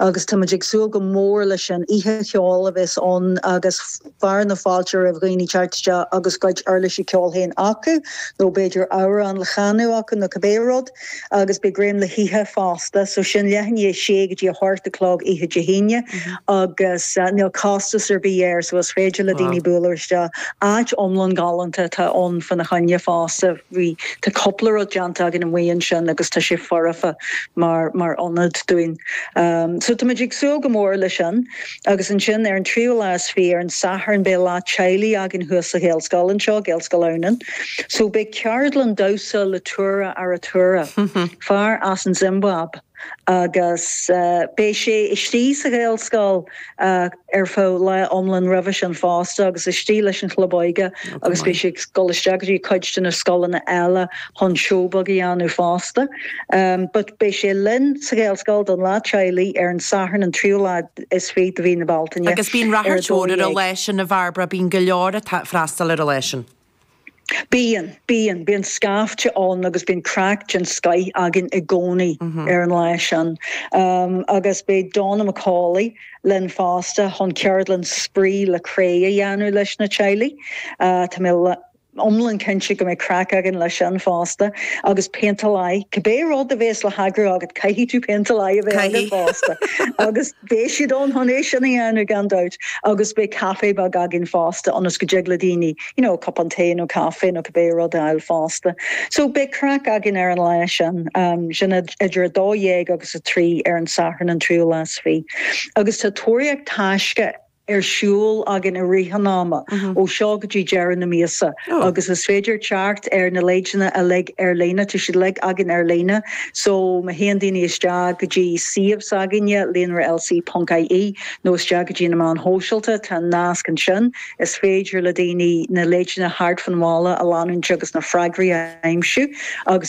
agus táimid ag súil go mór leis an oíche cheoil a bheas ann agus fearadh na fáilte roimh dhaoine teacht isteach agus a gcuid uirlisí ceoil féin acu nó b'fhéidir amhrán le canadh acu nó cibé rud agus beidh greim le hithe fosta so sin leath i ndiaidh a sé go dtí a hocht a chlog oíche Dé hAoine agus níl costas ar bith air so is féidir le daoine bualadh isteach. Áit iomlán galánta atá ann fá na choinne fosta. Bhí. Tá cúpla rud déanta againn amuigh ansin agus tá sé foirfe mar, mar ionad dúinn. So táimid ag súil go mór leis sin. Agus ansin ar an tríú lá is fiche, ar an Satharn, beidh Lá Teaghlaigh againn thuas sa Ghaelscoil anseo, Gaelscoil Adhamhnáin. So beidh ceardlann damhsa le Tura Arutura, fear as an Zimbáib. agus beidh sé istigh sa Ghaelscoil ar feadh lá iomlán roimhe sin fosta agus istigh leis an chlub óige agus beidh sé ag dul isteach go dtí cuid de na scoileanna eile chun seó beag a dhéanamh fosta. But beidh sé linn sa Ghaelscoil don Lá Teaghlaigh ar an Satharn an tríú lá is fiche de mhí na Bealtaine. Agus bíonn ráchairt ar an lá sin a Bhairbre, bíonn go leor ag freastal ar an lá sin. Bíonn, bíonn, bíonn scaifte ann agus bíonn craic den scoith againn i gcónaí ar an lá sin. Agus beidh Donna McCauley linn fosta chun ceardlann spraoi le cré a dhéanamh leis na teaghlaigh. Tá mé iomlán cinnte go mbeidh craic againn leis sin fosta. Agus péinteáil aghaidh. Cibé rud a bhéas le heagrú agat, caithfidh tú péinteáil aghaidh a bheith agat fosta. Agus. Beidh siad ann chun é sin a dhéanamh, gan dabht, agus beidh caife beag againn fosta ionas go dtig le daoine, you know, cupán tae nó caife nó cibé rud a fháil fosta. So, beidh craic againn ar an lá sin, sin idir a dó dhéag agus a trí ar an Satharn, an tríú lá is fiche. Agus tá tóraíocht taisce ar siúl againn i rith an ama, ó seo go dtí deireadh na míosa, agus is féidir teacht ar na leideanna uilig ar líne, tá siad uilig againn ar líne, so má théann daoine isteach go dtí suíomh s'againne, Líonra LC ponc IE, nó isteach go dtí na meáin shóisialta, tá an nasc ansin, is féidir le daoine na leideanna thart fán bhaile a leanúint agus na freagraí a aimsiú, agus.